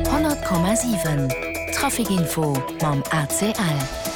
100,7 Trafic Info mam ACL.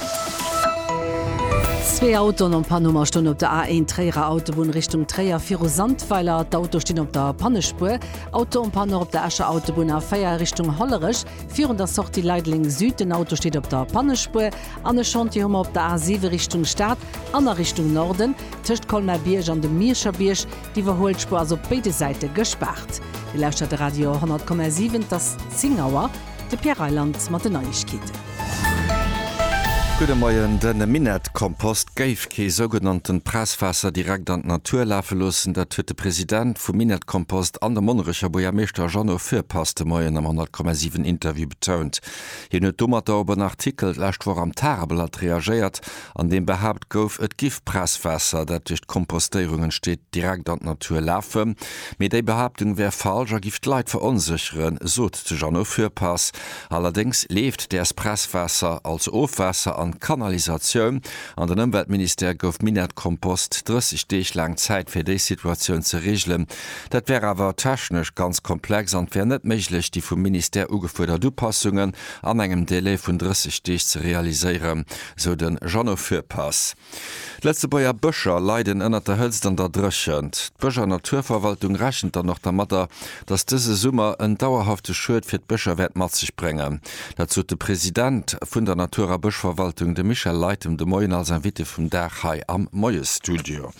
Zwee Autoen am Panuma stoen op der A1 Tréierer Autobunn Richtung Tréier viru Sandweiler. D'Autoe stinn op der Pannespuer. Auto um Panneau op der Escher Autobunn A4 Richtung Hollerech virun der Sortie Leideleng Süd. Den Auto steet op der Pannespuer. An e Chantier hu mer op der A7 Richtung Stad an a Richtung Norden tëscht Colmer-Bierg an dem Mierscherbierg. D'Iwwerhuelspur ass op béide Säite gespaart. Dir lauschtert de Radio 100,7, et ass 10 Auer. De Pierre Reyland mat den Neiegkeeten. Gudde Moien. De Minettkompost géif kee sougenannte Presswaasser direkt an d'Natur lafe loossen. Dat huet de President vu Minettkompost an de Monnerecher Buergermeeschter Jeannot Foepass de Moien am 100,7 Interview betount. Hien huet domatter op en Artikel d'lescht Woch am Tageblatt reagéiert, an deem behaapt gouf, et giff Presswaasser, dat duerch d'Kompostéierung entsteet, direkt an d'Natur lafen. Mee déi Behaaptung wär falsch a giff d'Leit veronsécheren, sot de Jeannot Fürpass. Allerdéngs leeft däers Presswaasser als Ofwaasser an d'Kanalisatioun an den Ëmweltministère gouf Minett-Kompost 30 Deeg laang Zäit fir déi Situatioun ze reegelen. Dat wär awer technesch ganz komplex an et wär net méiglech, déi vum Ministère ugefuerdert Upassungen an engem Delai vun 30 Deeg ze realiséieren, sou de Jeannot Fürpass. D'Lëtzebuerger Bëscher leiden ënnert der Hëtzt an der Dréchent. D'Bësch a Naturverwaltung rechent dann och dermadder, datt dëse Summer en dauerhafte Schued fir d'Bëscher wäert mat sech bréngen. Dat sot de President vun der Natur a Bëschverwaltung, de Michel Leytem, de Moien als Invité vum Dag hei am Moiesstudio.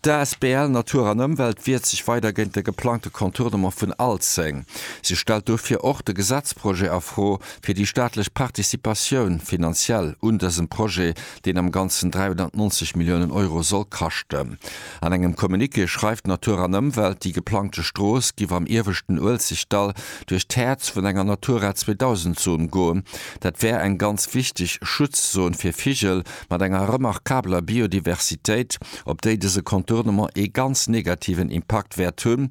D'asbl Natur an Ëmwelt wiert sech weider géint de geplangte Contournement vun Alzeng. Si stellt dofir och de Gesetzprojet a Fro, fir déi staatlech Participatioun finanziell un dësem Projet, deen am Ganzen 390 Milliounen Euro soll kaschten. An engem Communiqué schreift Natur an Ëmwelt, déi geplangte Strooss giff am ieweschten Uelzechtdall duerch d'Häerz vun enger Natura 2000 Zon goen. Dat wär eng ganz wichteg Schutzzon fir Vigel, mat enger remarkabeler Biodiversitéit, op déi dëse Contournement ee ganz negativen Impakt wäert hunn.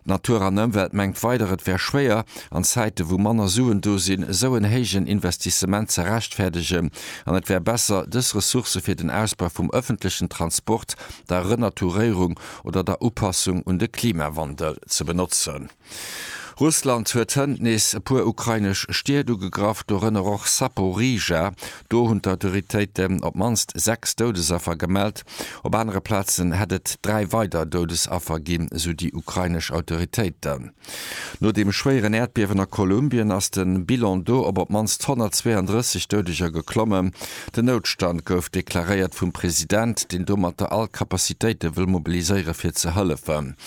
D'Natur an Ëmwelt mengt weider, et wär schwéier, an Zäite wou manner Suen do sinn, esou en héijen Investissement ze rechtfäerdegen, an et wär besser, dës Ressourcë fir den Ausbau vum ëffentlechen Transport, der Renaturéierung oder der Upassung un de Klimawandel ze benotzen. Russland huet hënt nees e puer ukrainesch Stied ugegraff, dorënner och Saporizhzhia. Do hunn d'Autoritéiten op d'mannst sechs Doudesaffer gemellt. Op anere Plazen hätt et dräi weider Doudesaffer ginn, sou déi ukrainesch Autoritéiten. No dem schwéieren Äerdbiewen a Kolumbien ass de Bilan do op op d'mannst 132 Doudeger geklommen. Den Noutstand gouf deklaréiert vum President, deen domat all Capacitéite wëll mobiliséiere fir ze hëllefen.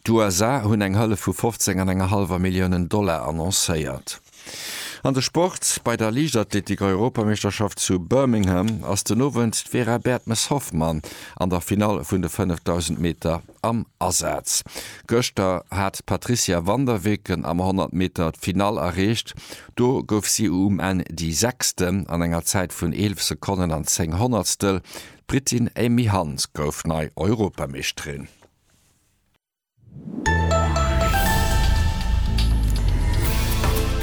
D'USA hunn eng Hëllef vu 15 an enger hallwer Milliounen Dollar annoncéiert. An de Sport, Bei der Liichtathletik-Europameeschterschaft zu Birmingham ass den Owend d'Vera Bertmes-Hoffmann an der Finall vun de 5000 Meter am Asaz. Gëschter hat d'Patricia Van der Weken am 100 Meter d'Finall erreecht. Do gouf si um Enn déi Sechste an enger Zäit vun 11 Sekonnen an 10 Honnertstel. D'Britin Amy Hunt gouf nei Europameeschterin.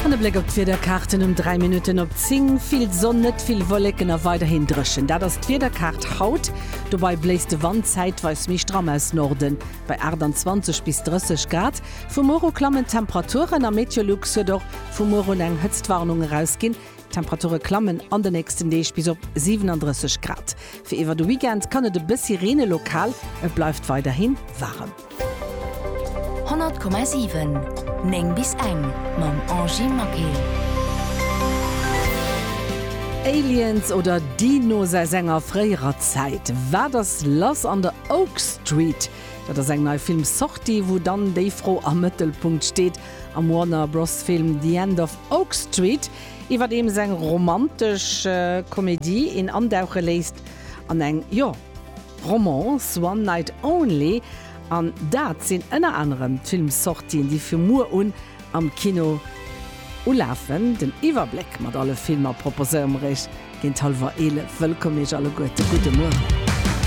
An e Bléck op d'Wiederkaarten um 3 Minutten op 10, vill Sonn, net vill Wolleken a weiderhin dréchen. Dat ass d'Wiederkaart haut. Dobei bléist de Wand zäitweis méi stramm aus Norden, bei 28 bis 30 Grad. Vu muer u klammen d'Temperaturen a Meteolux huet och vu muer un eng Hëtztwarnung erausginn. D'Temperature klammen an de nächsten Deeg bis op 37 Grad. Fir iwwer de Weekend kann et e bëssi reene lokal, et bleift weiderhi waarem. 100,7 9 bis eng mam Angie Maquet. Aliens oder Dinos aus enger fréierer Zäit? Wat ass lass an der Oak Street? Dat ass eng nei Filmssortie, wou dann déi Fro am Mëttelpunkt steet. Am Warner Bros Film The End of Oak Street, iwwerdeems eng romantesch Komedie een andauche léisst an eng, jo, Romance, One Night Only, an dat sinn ënner anerem d'Filmsortien déi vu muer un am Kino ulafen. Den Iwwerbléck mat alle Filmer proposéiere mer iech géint hallwer 11. Wëllkomm iech alleguerte, gudde Mueren.